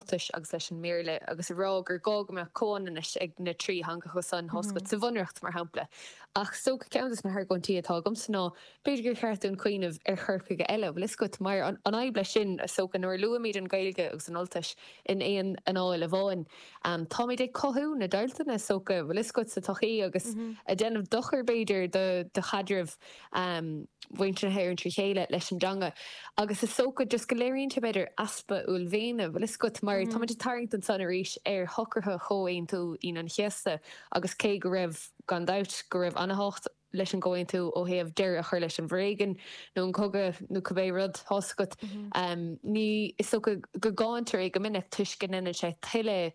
Ultais agus leis an mBéarla agus a rá gur gá go mbeadh comhionannas ag na trí theangacha san tá fhios agat sa Bhunreacht mar shampla. Ach is dócha ceann dos na hargóintí atá agamsa ná b'fhéidir gur cheart dúinn cuimhneamh ar chur chuige eile, bhfuil fhios agat, mar an fhadhb leis sin is dócha nuair luaimíd an Ghaeilge agus an Ultais in aon anáil amháin táimíd ag cothú na deighilteanna is dócha bhfuil fhios agat sa tsochaí agus ag déanamh dochair b'fhéidir do chaidreamh um mhuintir na hÉireann trí chéile leis an dteanga agus is dócha just go léiríonn sé b'fhéidir easpa uaillmhéine bhfuil fhios agat mar táimíd ag tarraingt ansan arís ar shocruithe Chomhaontú Aoine an Chéasta agus cé go raibh gan dabht go raibh ana-thábhacht leis an gComhaontú ó thaobh deireadh a chur leis an bhforéigean nó an cogadh nó cibé rud tá fhios agat um ní is dócha go gcáintear é go minic toisc go ndéanann sé tuilleadh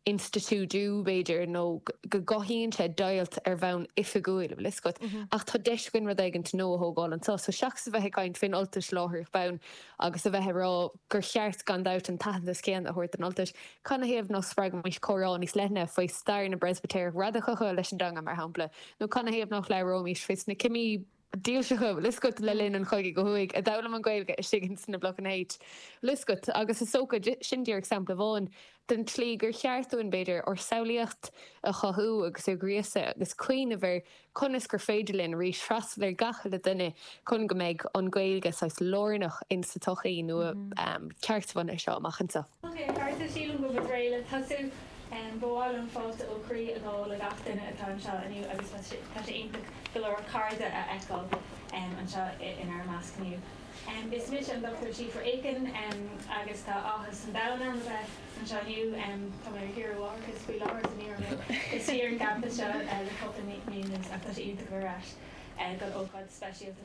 institiúidiú, b'fhéidir, nó go gcothaíonn sé deighilt ar bhonn oifigiúil, an bhfuil fhios agat. Ach tá deis againn rud éigint nua a thógáil anso. So seachas a bheith ag caint fén Ultais láithreach bonn agus a bheith ag rá gur cheart gan dabht an t-aitheantas céanna a thabhairt don Ultais, canathaobh nách spreagfaimís comhrá níos leithne faoi stair na bPreispitéireach radacacha leis an dteanga, mar shampla? Nó canathaobh nách labhróimís faoi sna cimí. dílseacha, bhfuil fhios agat, le linn an chogaidh ó thuaidh, a d'fhoghlaim an Ghaeilge istigh ins na Blocanna H, bhfuil fhios agat, agus is dócha, sin díreach sampla amháin den tslí gur cheart dúinn, b'fhéidir, ár samhlaíocht a chothú agus a ghríosadh agus cuimhneamh ar conas gur féidir linn arís freastal ar gach uile duine chun go mbeidh an Ghaeilge saghas lárnach insa tsochaí nua ceartbhunaithe seo amach anso. Ok, a chairde, sílim go bhfuil muid réidh le tosú. Ba mhaith liom fáilte ó chroí a ghabháil le gach duine atá anseo inniu agus tá sé iontach go leor cairde a fheiceáil anseo inár measc inniu. Is mise an Dr. Síobhra Aiken agus tá áthas an domhain orm a bheith anseo inniu. Tá mé ar saoire mháithreachais faoi láthair agus ní raibh mé istigh ar an gcampas seo le cúpla mí anuas ach tá sé iontach a bheith ar ais don ócáid speisialta seo.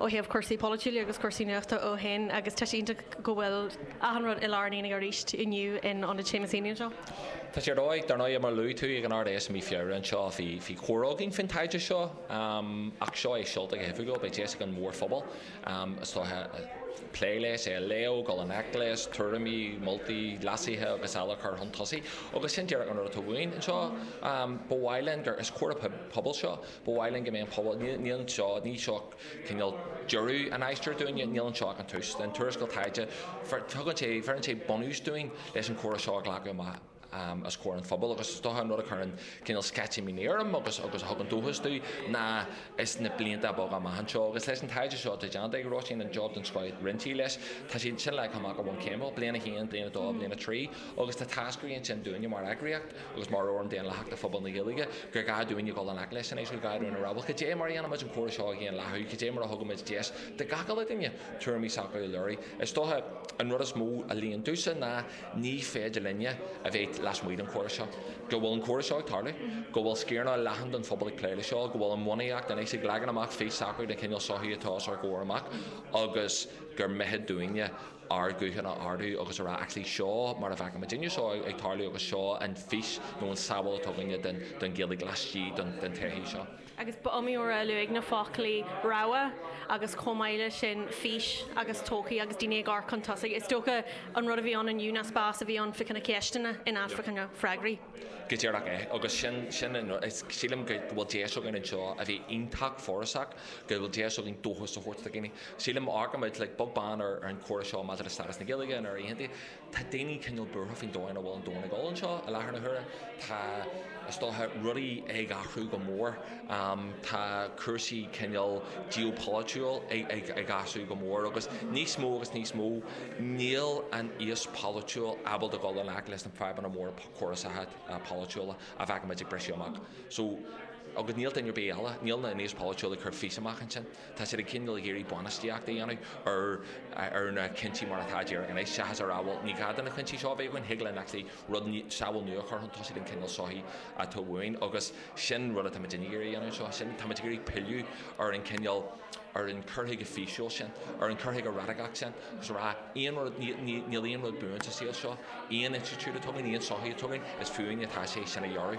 ó thaobh cúrsaí polaitiúla agus cúrsaí nuachta ó shoin agus tá sé iontach go bhfuil achan rud i lár an aonaigh arís inniu in Ionad Seamus Heaney anseo. Tá sé ar dóigh. Dar ndóigh, mar a luaigh tú, ag an Ard-Fheis i mí Feabhra anseo bhí bhí comhrá againn faoin taighde seo ach seo é seolta go hoifigiúil. Beidh deis ag an mhórphobal, is dócha, plé leis, é a léamh, dul i ngleic leis, tuairimí, moltaí, leasuithe agus eile a chur chun tosaigh agus sin díreach an rud atá uainn anseo. Ba mhaith linn gur, is comhrá pobail seo, Ba mhaith linn go mbeidh an pobal, níl anseo, ní seo cineál deireadh an aistir dúinne, níl anseo ach an tús. An tuarascáil taighde, tugann sé, bheireann sé bunús dúinn leis an comhrá seo a ghlacadh amach os comhair an phobail agus is dócha an rud a chuireann cineál sceitimíní orm agus agus a thugann dóchas dom ná ins na blianta beaga amach anseo agus leis an taighde seo atá déanta ag Róisín, an job den scoth a rinne sí leis, tá sé sin leagtha amach i bhfoirm céimeanna, bliain a haon, bliain a dó, bliain a trí agus tá táscairí ansin dúinne mar eagraíocht. agus mar fhóram daonlathach do phobal na Gaeilge, gur gá dúinn a dhul i ngleic leis anois, gá dúinn a rá bhuel. Cad é mar a dhéanaimid an comhrá seo a dhaonlathú? Cad é mar a thugaimid deis do gach uile dhuine tuairimí s'acu a léiriú? Is dócha an rud is mó a luíonn domhsa ná ní féidir linne a bheith lasmuigh den chomhrá seo. Go bhfuil an comhrá seo ag tarlú, go bhfuil sciaranna leathan den phobal ag plé leis seo, go bhfuil an bhunaíocht anois ag leagan amach fís s'acu den chineál sochaí atá os ár gcomhair amach agus gur mithid dúinne, ár nguthanna a ardú agus a rá actually seo mar a bhfeicimidne seo ag tarlú agus seo an fís nó an tsamhail atá againne den Ghaeilge laistigh den tsochaí seo. Agus ba iomaí uair a luadh na foclaí 'rogha' agus chomh maith leis sin 'fís' agus 'todhchaí' agus daoine ag amharc chun tosaigh. Is dócha an rud a bhí ann inniu ná spás a bhí ann fá choinne ceisteanna in áit fá choinne freagraí. Go díreach é agus sin sin an rud is sílim go bhfuil deis againn anseo a bheith iontach forásach go bhfuil deis againn dóchas a thabhairt do dhaoine. Sílim má amharcaimid like beag beann ar an chomhrá seo maidir le stádas na Gaeilge in Éirinn aontaithe, tá daoine cineál buartha faoin dóigh ina bhfuil an domhan ag dul anseo i láthair na huaire. Tá, is dócha, rudaí ag athrú go mór. Tá cúrsaí cineál geopolaitiúil ag athrú go mór agus níos mó agus níos mó níl an aos polaitiúil ábalta dul i ngleic leis na fadhbanna móra córasacha polaitiúla a bhfeicimid ag briseadh amach. So, agus níl duine ar bith eile, níl an aos polaitiúil ag cur fís amach ansin. Tá siad ag coinneáil ag iarraidh bainistíocht a dhéanamh ar ar na cúinsí mar atá díreach anois, seachas a rá bhuel ní gá do na cúinsí seo a bheith againn, thig linn actually rud, samhail nua a chur chun tosaigh den chineál sochaí atá uainn agus sin rud atáimid ag iarraidh a dhéanamh anseo, sin, táimid ag iarraidh pilleadh ar an chineál, ar an cur chuige físiúil sin, ar an cur chuige radacach sin agus a rá aon rud, níl, níl aon rud buan sa saol seo, aon institiúid atá againn, aon sochaí atá againn, is fúinn atá sé sin a dhearadh.